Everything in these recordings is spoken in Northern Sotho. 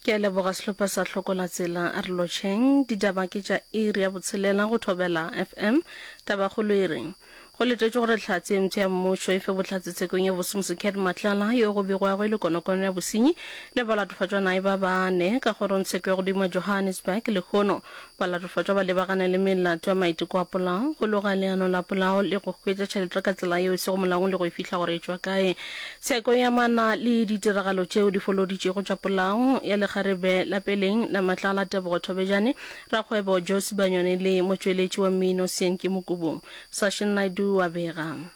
Ke a leboga sehlopha sa Hlokola Tsela a re lotšheng. Ditaba ke tša iri ya botshelela go Thobela FM. Tabakgolo e re go letetšwe gore Hlatse e ntho ya mmušo e fe bohlatse tshekong ya bosemusi Cat Matlala yo go begwago e le konokono ya bosenyi le balatofatšwa nae ba bane ka kgorong tsheko ya godimo Johannesburg lehono Balatofatšwa ba lebagana le melato ya maiteko a polao, go loga leano la polao le go hwetša tšhelete ka tsela yeo e sego molaong le go e fihla gore e tšwa kae. Tsheko e amana le ditiragalo tšeo di foloditšego tša polao ya lekgarebe la peleng la Matlala Tebogo Thobejane, rakgwebo Joe Sibanyoni le motšweletši wa mmino Syenki Mokubung. Sashin Naidoo a bega.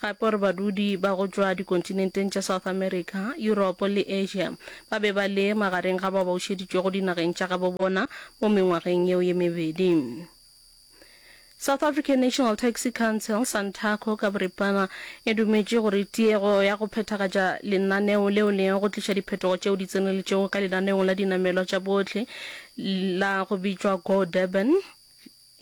gape gore badudi ba go tšwa dikontinenteng tša South America, Yuropo le Asia ba be ba le magareng ga bao ba bušeditšwego dinageng tša gabo bona mo mengwageng yeo ye mebedi. South African National Taxi Council, Santaco ka boripana, e dumetše gore tiego ya go phethagatša lenaneo leo le go tliša diphetogo tšeo di tseneletšego ka lenaneong la dinamelwa tša bohle la go bitšwa Go Durban,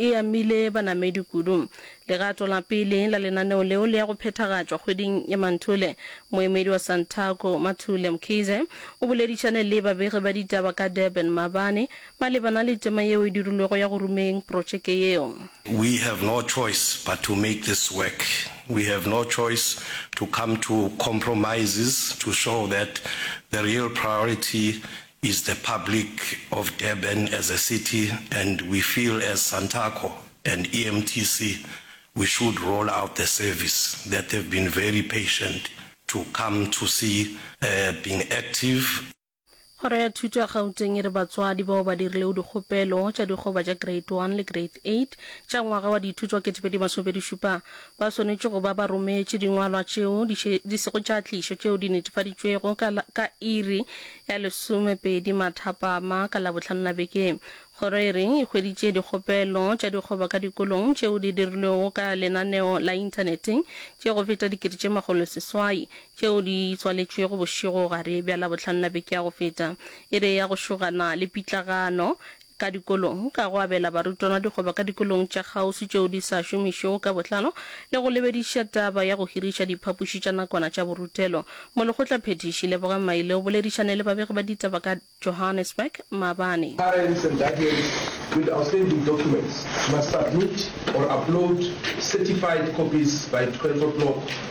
e amile banamedi kudu. Legato la pele la lenaneo leo le ya go phethagatšwa kgweding ya Manthule. Moemedi wa Santaco, Mathule Mkhize, o boledišane le babegi ba ditaba ka Durban maabane malebana le tema yeo e dirilwego ya go rumeng protšeke yeo. We have no choice but to make this work. We have no choice to come to compromises to show that the real priority Is the public of Durban as a city and we feel as Santaco and EMTC we should roll out the service that they've been very patient to come to see being active. Kgoro ya Thuto ya Gauteng e re batswadi bao ba dirilego dikgopelo tša dikgoba tša Grade One le Grade Eight tša ngwaga wa dithuto wa ketepedi masomepedi šupa ba swanetše go ba ba rometše dingwalwa tšeo di sego tša tlišo tšeo di netefaditšwego ka iri ya lesomepedi Mathapama ka Labohlano la beke ye. Kgoro e re e hweditše dikgopelo tša dikgoba ka dikolong tšeo di dirilwego ka lenaneo la inthaneteng tše go feta dikete tše makgolo seswai tšeo di tswaletšwego bošego gare bja Labohlano la beke ya go feta. E re e ya go šogana le pitlagano ka dikolong, ka go abela barutwana dikgoba ka dikolong tša kgauswi tšeo di sa šomišwego ka botlalo le go lebediša taba ya go hiriša diphapoši tša nakwana tša borutelo. Molekgotla Phethiši Lebogang Maile o boledišane le babegi ba ditaba ka Johannesburg maabane. Parents and guardians with outstanding documents must submit or upload certified copies by 12 o'clock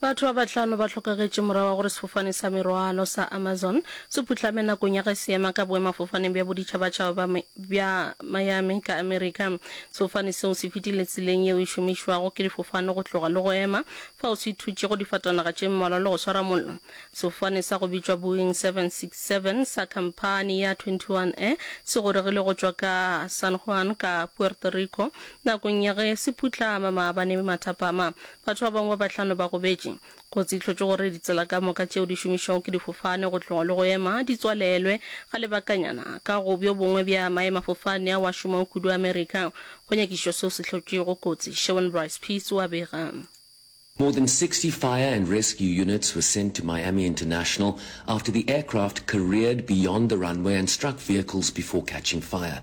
Batho ba bahlano ba hlokagetše morago ga gore sefofane sa merwalo sa Amazon se putlame nakong ya ge se ema ka boemafofaneng bja boditšhabatšhaba bja bja Miami ka Amerika. Sefofane seo se fetile tseleng yeo e šomišwago ke difofane go tloga le go ema, fao se thutšego difatanaga tše mmalwa le go swara mollo. Sefofane sa go bitšwa Boeing 767 sa khamphani ya Twenty One Air se goregile go tšwa ka San Juan ka Puerto Rico nakong ya ge se putlama maabane mathapama. Batho ba bangwe ba bahlano ba gobetše. Kotsi e hlotše gore ditsela ka moka tšeo di šomišwago ke difofane go tloga le go ema di tswalelwe ga lebakanyana ka go bjo bongwe bja maemafofane ao a šomago kudu Amerika. Go nyakišišwa seo se hlotšego kotsi, Sherwin Bryce Pease o a bega. More than 60 fire and rescue units were sent to Miami International after the aircraft careered beyond the runway and struck vehicles before catching fire.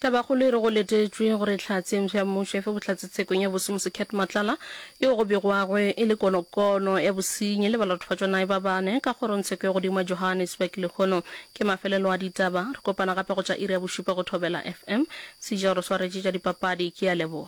Tabakgolo e re go letetšwe gore Hlatse Mpshe ya Mmušo e fe Bohlatse tshekong ya Bosi Mosekhet Matlala yeo go begwago e le konokono ya bosenyi le balatofatšwanae ba bane ka kgorongtsheko ya godimo ya Johannesburg lehono ke mafelelo a ditaba. Re kopana gape go tša iri ya bošupa go Thobela FM. Sejaro swaretše tša dipapadi ke a leboga.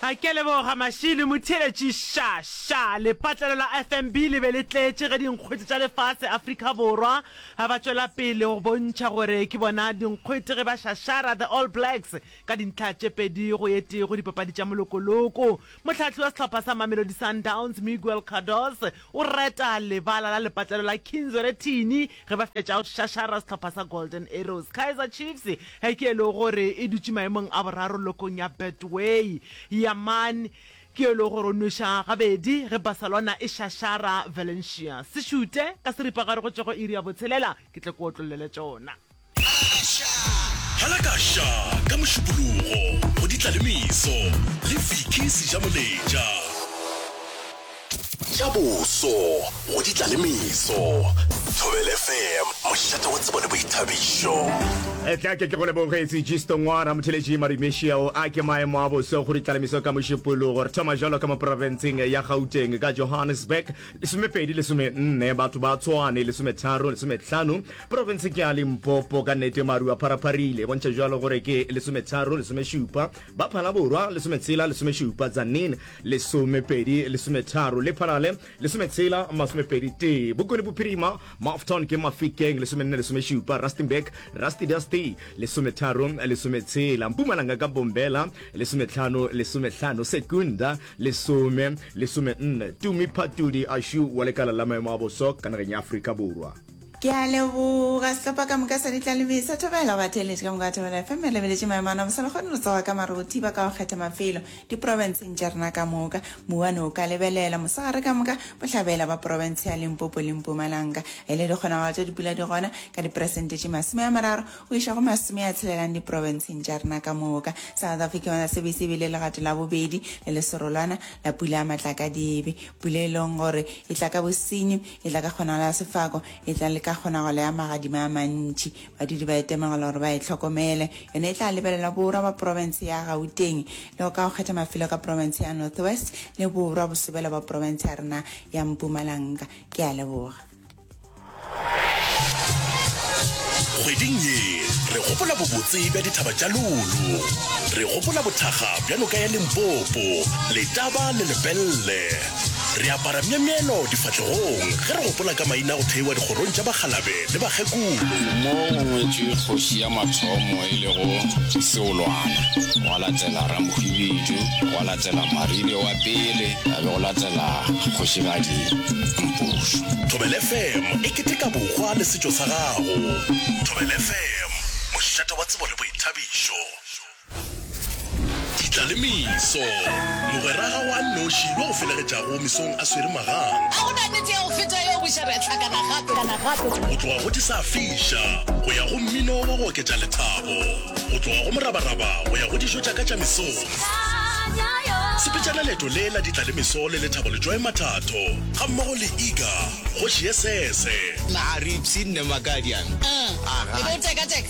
A ke a leboga Mashilo Motheeletši. Sha, sha, lepatlelo la FNB le be le tletše ge dinkgwete tša lefase, Afrika Borwa, a ba tšwela pele go bontšha gore ke bona dinkgwete ge ba šašara The All Blacks ka dintlha tše pedi go ye tee go dipapadi tša molokoloko. Mohlahli wa sehlopha sa Mamelodi Sundowns, Miguel Cardoz, O reta lebala la lepatlelo la Kinzere Thini ge ba fetša go šašara sehlopha sa Golden Arrows. Kaizer Chiefs ge ke e lego gore e dutše maemong a boraro lokong ya Betway. Yaman ke yo e lego gore o nweša gabedi ge Barcelona e šašara Valencia. Se šute ka seripa gare go tšego iri ya botshelela, ke tle ke otlollele tšona. Hela ka ša ka Mošupologo go ditla le meso le Vicky Sejamoletša. Tša boso go ditla le meso. Thobela FM, mošate wa tsebo le boithabišo. Etla ke ke go leboge Sejisto Ngwana Motheletši Marimešeo a ke maemo a boso go ditla le meso ka Mošupologo. Re thoma jalo ka mo profenseng ya Gauteng ka Johannesburg. Lesomepedi lesomenne batho ba Tshwane, lesometharo, lesometlhano Profense ke ya Limpopo, ka nnete maru a pharapharile, e bontšha jalo gore ke lesometharo, lesomešupa, ba Phala Borwa, lesometshela, lesomešupa, Tzaneen, lesomepedi, lesometharo, Lephalale, lesometshela, masomepedi tee, Bokone Bophirima, Mafton ke Mafikeng, lesomenne, lesomešupa, Rustenburg, Rastidasti, lesometharo, lesometshela, Mpumalanga ka Bombela, lesometlhano, lesomehlano, Secunda, lesome, lesomenne, Tumi Phatudi Ashu wa lekala la maemo a boso ka nageng ya Afrika Borwa. Ke a leboga sehlopha ka moka sa ditlalemi sa Thobela ba theeletše ka moka wa Thobela FM e lebeletše maemo a nabo sa le kgone re tsoga ka mare go thiba ka go kgetha mafelo diprobenseng tša rena ka moka mouwane o ka lebelela mosegare ka moka bohlabela ba probense ya Limpopo le Mpumalanga e le dikgonagalo tša dipula di gona ka diperesente tše masome a mararo go iša go masome a tshelelang diprobenseng tša rena ka moka South Africa yona sebe se bile legato la bobedi le leserolwana la pula ya matlakadibe pula e leng gore e tla ka bosenyi E tla ka kgonagalo ya sefako, e tla le ka kgonagalo ya magadima a mantši. Badudi ba etemogela gore ba e hlokomele. Yona e tla lebelela borwa ba profense ya Gauteng, le go ka go kgetha mafelo ka profense ya North West le borwa bosobela bwa profense ya rena ya Mpumalanga. Ke a leboga. Kgweding ye, re gopola bobotse bja dithaba tša Lulu. Re gopola bothakga bja noka ya Limpopo, Letaba le Lepelle. Re apara myemyelo difahlegong ge re gopola ka maina go theiwa dikgorong tša bakgalabe le bakgekolo. Mo go ngwetšwe kgoši ya mathomo e lego Seolwana, gwa latela Ramokgwibidu, gwa latela Maribe wa pele, ga be go latela Kgošigadi Mpošo. Thobela FM e keteka bohwa le setšo sa gago. Thobela FM, mošate wa tsebo le boithabišo. Ditla le meso. Mogweraga wa nnoši yo o felegetšago mesong a swere magang. A go na nnete ya go feta yeo, buša re a hlakana gape. Go tloga go disafiša go ya go mmino wa go oketša lethabo, go tloga go morabaraba go ya go dijo tša ka tša mesong. Sepetšana leeto le la Ditla le Meso le Lethabo Letšwae Mathatho gammogo le Iga, kgoši ye sese. Nna Aripsy, nne Makadian. Hm, e be o tekateka.